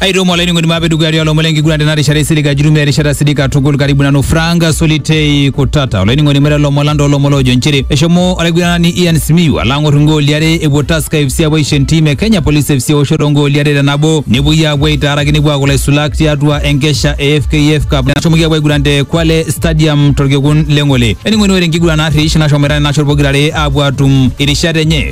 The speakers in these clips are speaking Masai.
aitomo olainining'oni maape dukuya tialo omon lenkiguran tena rishata isilig ajitumia erishata sidik katukul karibu nanu Frank Solitei Kutata olainining'oni mera lomon lang toolomon loojo nchere eshomo olaiguranani Ian Simiyu alo ang'or ingooli are epuo Tusker FC apuo aisho entim e Kenya Police FC eoshoto ongooli are te nabo nepuoi aapuo aitaaraki nepuo aaku ilaisulak tiatua enkesha e FKF Cup nashomoki apuo aiguran te Kwale Stadium torkekun le Ng'ole. Ening'oni ore enkiguran narrish nashomoita nena shot pokirare aapuo atum irishat enye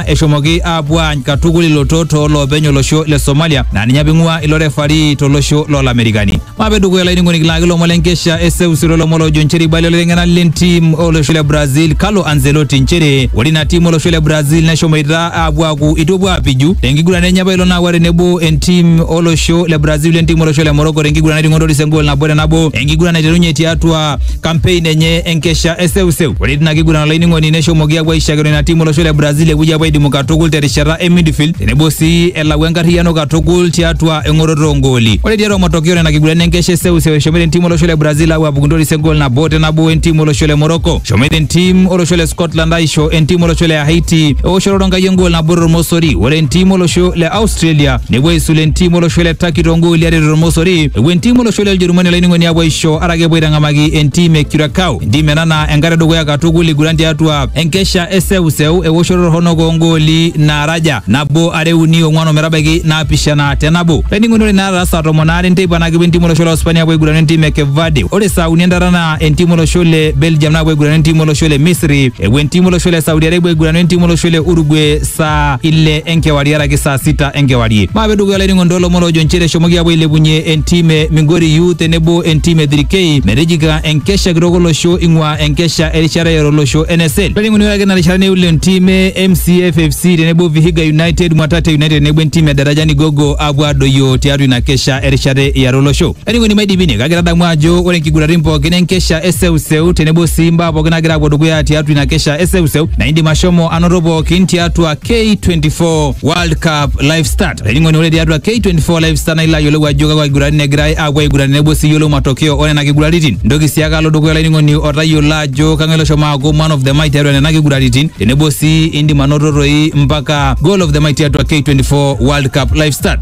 eshomoki aapuo aany katukul ilotot too loopeny olosho le Somalia naa ninye apa ing'ua ilo refari tolosho loolamerikani. Maape dukuya olainining'oni kilaaki ilomon le nkesha e seuseu olomon loojo nchere eibalie olaiteng'enani le ntim olosho le Brazil Carlo Ancelotti nchere ore ina tim olosho le Brazil neshomoita aapuo aaku eitu epuo aapiju tenkiguran enye apailong naawa tenebo entim olosho le Brazil wentim olosho le Morocco tenkiguran nating'o Toris engool nabo te nabo enkiguran naiterunye tiatua kampein enye enkesha eseuseu. Ore tina kiguran olainining'oni neshomoki apuo aishakino ina timu olosho le Brazil epuoi apuo aidimu katukul terishata e midfield tenebo sii elau enkarriyiano katukul tiatua eng'oroto oongooli. Ore tiatua matokeo nena kiguran enkesha eseuseu eshomoita entimu olosho le Brazil apuo apuku ntoris engool nabo te nabo entimu olosho le Morocco. Eshomoita entim olosho le Scotland aisho entim olosho le Haiti eoshoto tonkai engool nabo tormosori. Ore entim olosho le Australia nepuo aisul entim olosho le Turkey tongooli are tormosori. Epuo entim olosho le Ujerumani olainining'oni apuo aisho kake epuo aitang'amaki entim e Curacao. Entim ena naa enkata edukuya katukul iguran tiatua enkesha e seuseu ewoshoto torronok oongooli naaraja nabo are uni ong'wan ometabaiki naapishana te nabo. Laining'oni ore naata saa tomon aare enteipa naa kepuo entim olosho le Uspania apuo aigurana entim e Cape Verde. Ore saa uni entata naa entim olosho le Belgium naapuo aigurana entim olosho le Misri. Epuo entim olosho le Saudi Arabia aigurana entim olosho le Uruguay saa ile enkewarie araki saa sita enkewarie maape dukuya olainingo ntoolomon oojo nchere eshomoki aapuo ailepunye entim e migori u tenebo entim e dhirikei metijika enkesha kitok olosho ing'ua enkesha erishata yare olosho nsl olainining'oni ore ake ina rishata neul entim e mcf fc tenebo vihiga united mwatate united tenebo entim e darajani gogo aapuo aadoyio tiatua ina kesha erishata yare olosho Laining'oni maidipine kake tadamu ajo ore nkiguratin pookin enkesha e seuseu tenebo sii mbaa pookin nagira apuo dukuya tiatua ina kesha e seuseu na indim ashomo anoto pookin tiatua K24 World Cup Live Start. Laining'oni ore tiatua K24 Live Start na ilo ayiolou ajo kakwa kiguratin egirai apuo aiguran tenebo sii yiolou matokeo onena kiguraritin. Ntoki sii ake alo dukuya laining'oni otayiolo ajo kang'ae loshomo aaku man of the match tiatua nena kiguraritin tenebo sii indim anoto toi mpaka goal of the match tiatua K24 World Cup Live Start.